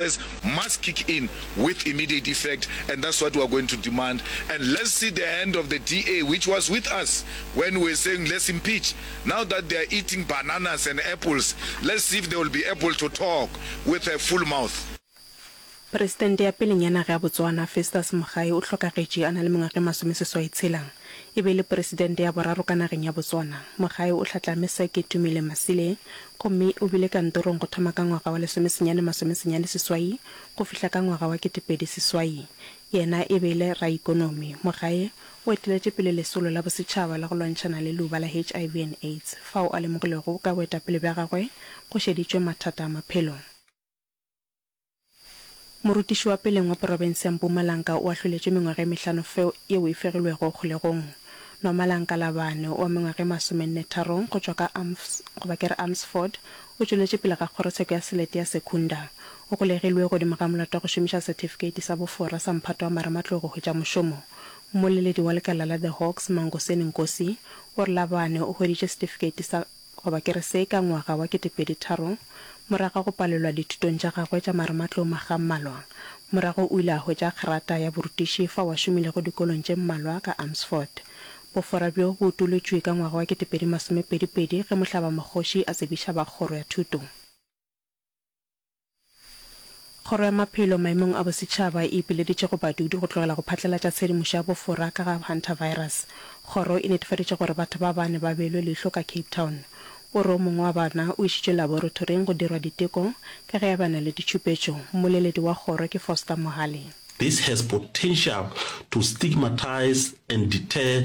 As must kick in with immediate effect and that's what we are going to demand and let's see the hand of the DA which was with us when we were saying let's impeach now that they are eating bananas and apples let's see if they will be able to talk with a full mouth. Presidente ya pelenyana ge ya Botswana, Festus Mogae o hlokagetše a na le mengwaga e masomeseswai tshela. E be e le Presidente ya boraro ka nageng ya Botswana. Mogae o hlatlame sa ke Tumile Masile gomme o bile kantorong go thoma ka ngwaga wa lesomesenyane masomesenyane seswai go fihla ka ngwaga wa ketepedi seswai. Yena e be e le raikonomi. Mogae o eteletše pele lesolo la bosetšhaba la go lwantšhana le leuba la HIV and AIDS fao a lemogilego ka boetapele bja gagwe go šeditšwe mathata a maphelo. Morutiši wa peleng wa porofense ya Mpumalanga o ahloletšwe mengwaga e mehlano feo yeo e fegilwego kgolegong. Nomalang Kalabane wa mengwaga e masomennetharong go tšwa ka Amfs, goba ke re Amsford, o tšweletše pele ga kgorotsheko ya selete ya Secunda. O golegilwe godimo ga molato wa go šomiša setifikeiti sa bofora sa mphato wa marematlou go hwetša mošomo. Mmoleledi wa lekala la The Hawks, Mangoseni Nkosi, o re Labane o hweditše setifikeiti sa Goba ke re se ka ngwaga wa ketepedi tharo, morago ga go palelwa dithutong tša gagwe tša marematlou makga a mmalwa, morago o ile a hwetša kgerata ya borutiši fao a šomilego dikolong tše mmalwa ka Amersfoort. Bofora bjo bo utolotšwe ka ngwaga wa ketepedi masomepedi pedi ge mohlabamokgoši a tsebiša ba kgoro ya thuto. Kgoro ya Maphelo Maemong a Bosetšhaba e ipileditše go badudi go tlogela go phatlalatša tshedimošo ya bofora ka ga hantavirus. Kgoro e netefaditše gore batho ba bane ba beilwe leihlo ka Cape Town. O re o mongwe wa bona o išitšwe laborothoring go dirwa diteko ka ge eba na le ditšhupetšo. Mmoleledi wa kgoro ke Foster Mohale. This has potential to stigmatize and deter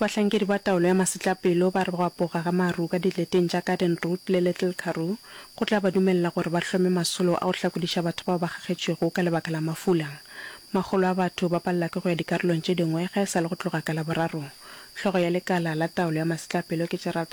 Bahlankedi ba taolo ya masetlapelo ba re go apoga ga maru ka dileteng tša Garden Route le Little Karoo go tla ba dumelela gore ba hlome masolo a go hlakodiša batho bao ba kgakgetšwego ka lebaka la mafula. Makgolo a batho ba palela ke go ya dikarolong tše dingwe ga e sa le go tloga ka Laboraro. Hlogo ya lekala la taolo ya masetlapelo ke Gerald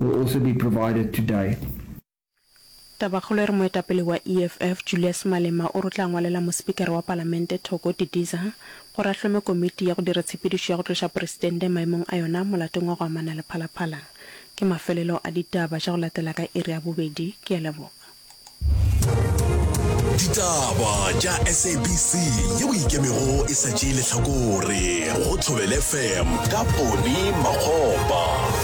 will also be provided today. Tabakgolo e re moetapele wa EFF, Julius Malema o re o tla ngwalela Mospikara wa Palamente Thoko Didiza gore a hlome komiti ya go dira tshepedišo ya go tloša Presidente maemong a yona molatong wa go amana le phalaphala. Ke mafelelo a ditaba tša go latela ka iri ya bobedi. Ke a leboga. Ditaba tša SABC ye boikemego e sa tšee lehlakore go Thobel FM ka Ponny Makgopa.